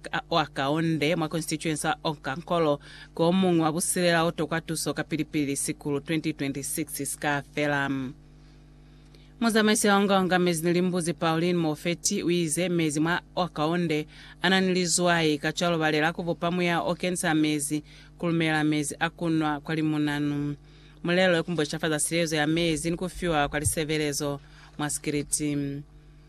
Ka wa kaunde mwa Constituency ya Onkankolo, ki omuñwi wa busilela o tokwa tuso kapili-pili sikulu 2026 si ka fela. Muzamaisi ya Onga-Onga Mezi ni Limbuzi, Pauline Mofeti, u ize, Mezi mwa wa kaunde a na ni lizwai, kacwalo ba lela ku bupa muya o kenisa mezi ku lumela mezi a ku nwa kwa limunanu. Mulelo ku mboicafaza silezo ya mezi ni ku fiwa kwa lisebelezo mwa sikiliti.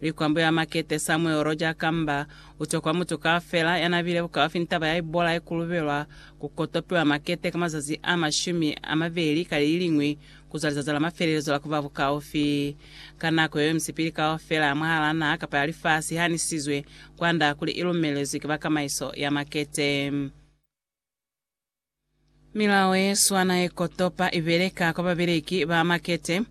Likwambo ya Makete Samuel Roger Kamba utokwa mutu kaufela yanabile bukaufi ni taba ya ibola ikulubelwa ku kotopiwa makete ka mazazi a mashumi amabeli ka leliliñwi kuzwa lizazi la mafelelezo la kuba bukaufi. Ka nako yeo misipili kaufela mwahalaa naha kapa ya lifasi ihanisizwe kwanda kuli ilumelezwi ki bakamaiso ya makete. Milao ye swana ye kotopa i beleka kwa babeleki ba makete,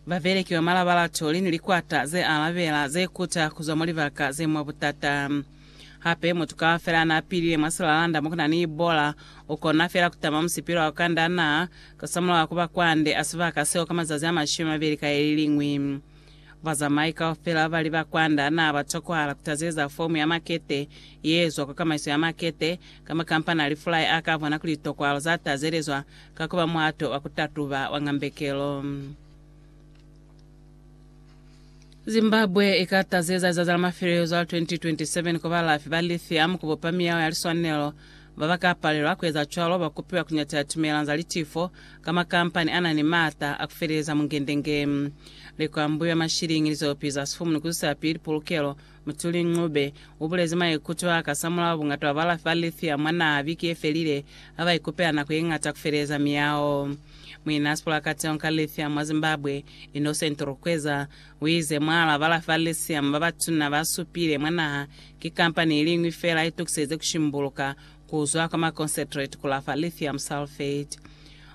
babeleki ba malabalatoli ni likwata ze alabela ze kuta ku zwa mwa libaka ze mwa butata. Hape, mutu kaufela n'a pilile mwa silalanda mo ku na ni Ebola u kona fela ku tama musipilo wa ku kanda naa, kosamulaho ku ba kwande a sibaka seo ka mazazi a mashumi a mabeli ka ye li liñwi. Bazamai kaufela bali ba kwanda naa ba tokwahala ku tazeza fomu ya makete ye ezwa kwa Kamaiso ya Makete, ka makampani a lifulai a ka bona kuli litokwahalo za tazelezwa ka ku ba muhato wa ku tatuba wa ngambekelo. Zimbabwe i ka tazeza lizazi la mafelezo la 2027 kwa balafi ba lithium ku bupa miyao ya liswanelo Ba ba ka palelwa ku eza cwalo ba kupiwa ku nyatela tumelang za litifo ka makampani a na ni maata a ku feleleza mungendenge. Likwambuyo la mashiliñi li zo piza sifumunu ku zwisa pili pulukelo, Mutuli Ncube u bulezi maikuto a kasamulaho bungata bwa balafi ba lithium mwa naha biki ye felile ha ba ikupela nako ye ñata ku feleleza miyaho. Muinasipula wa kateho ka lithium mwa Zimbabwe, Innocent Rukweza, Uize, Mwal'a bala Farisium babatuna basupile mwa naha ki kampani iliñwi feela itukiseze kushimbuluka kuzwa kwa ma concentrate kulafa lithium sulfate.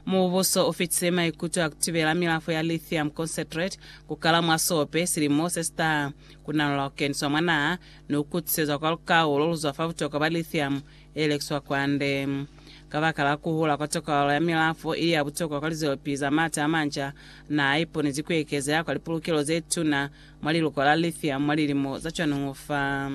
Mubuso ufitise maikuto a kutibela milafo ya lithium concentrate kukala mwa sope silimo sesitaha, kunanula kukeniswa mwa naha ni kukutisezwa kwa lukau loluzwa fa butokwa bwa lithium e lekiswa kwande. Kabakala kuhula kwa tokalo ya milafo ili ya butokwa kwa lizelopili za maata a manca, naa iponezi kuekeza ya kwa lipulukelo zetuna mwa liluko la lithium mwa lilimo za cwanuñu fa.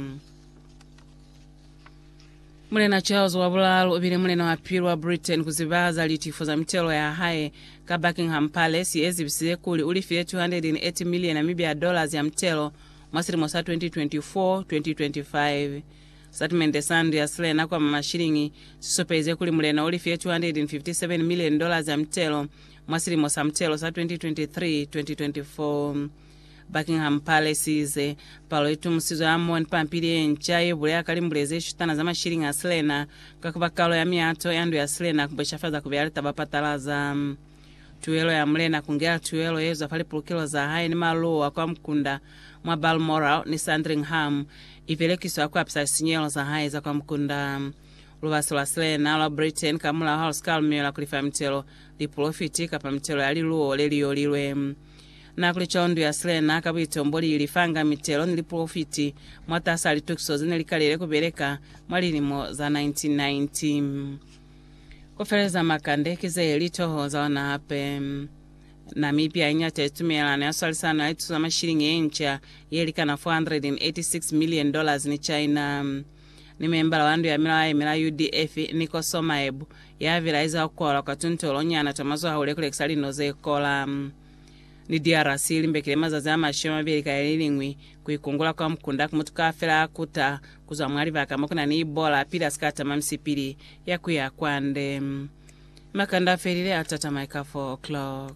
Mulena Charles wa Bulaalu ubile mulena wa pili wa Britain kuziba za litifo za mitelo ya hae, ka Buckingham Palace ye zibisize kuli ulifile 208 miliona mibi ya dollars ya mitelo mwa silimo sa 2024, 2025. Sitatimende sa ndu ya silena kwa Mamashilingi si supelize kuli mulena u lifile 257 milioni dollars ya mitelo mwa silimo sa mitelo sa 2023-2024. Buckingham Palace i ize, Palo i tumusizwe hamoho ni pampili ye nca ye buleha ka limbule ze shutana za mashilingi a silena ka ku ba kalo ya miato ya ndu ya silena ku bweshafaza ku beya litaba patalaza. Tuelo ya mulena kungela tuelo yezwa fa lipulukelo za hae ni maluwo a kwa mukunda mwa Balmoral ni Sandringham ibelekiswa kuapisa lisinyehelo za hae za kwa mukunda. Lubasi lwa silena lwa Britain kamulaho halusikaa lumiwela kulifa mitelo, lipulofiti, kapa mitelo ya liluwo leliyolilwe. Na kuli co ndu ya silena ka buitombo liilifanga mitelo ni lipulofiti mwatasaa litukiso zenelikaliile kubeleka mwa lilimo za 1990. Ku feleza makande ki ze li toho za ona hape. Namibia i ñate tumelano ya swalisano ya lituso za mashilingi ye nca ye likana $486 million ni China. Ni membala wa ndu ya milao ya yemela UDF, Nico Somaebu, ya bilaiza ku kwalwa kwa tuntolo nyana twa mazwahahule ku lekisa lino ze kola. Ni DRC i limbekile mazazi a mashumi a mabeli ka leliñwi ku ikungula kwa mukunda ku mutu kaufela a kuta ku zwa mwa libaka mo ku na ni Ebola pili a si ka tama misipili ya ku ya kwande. Makanda a felile, a tatama eka 4 o'clock.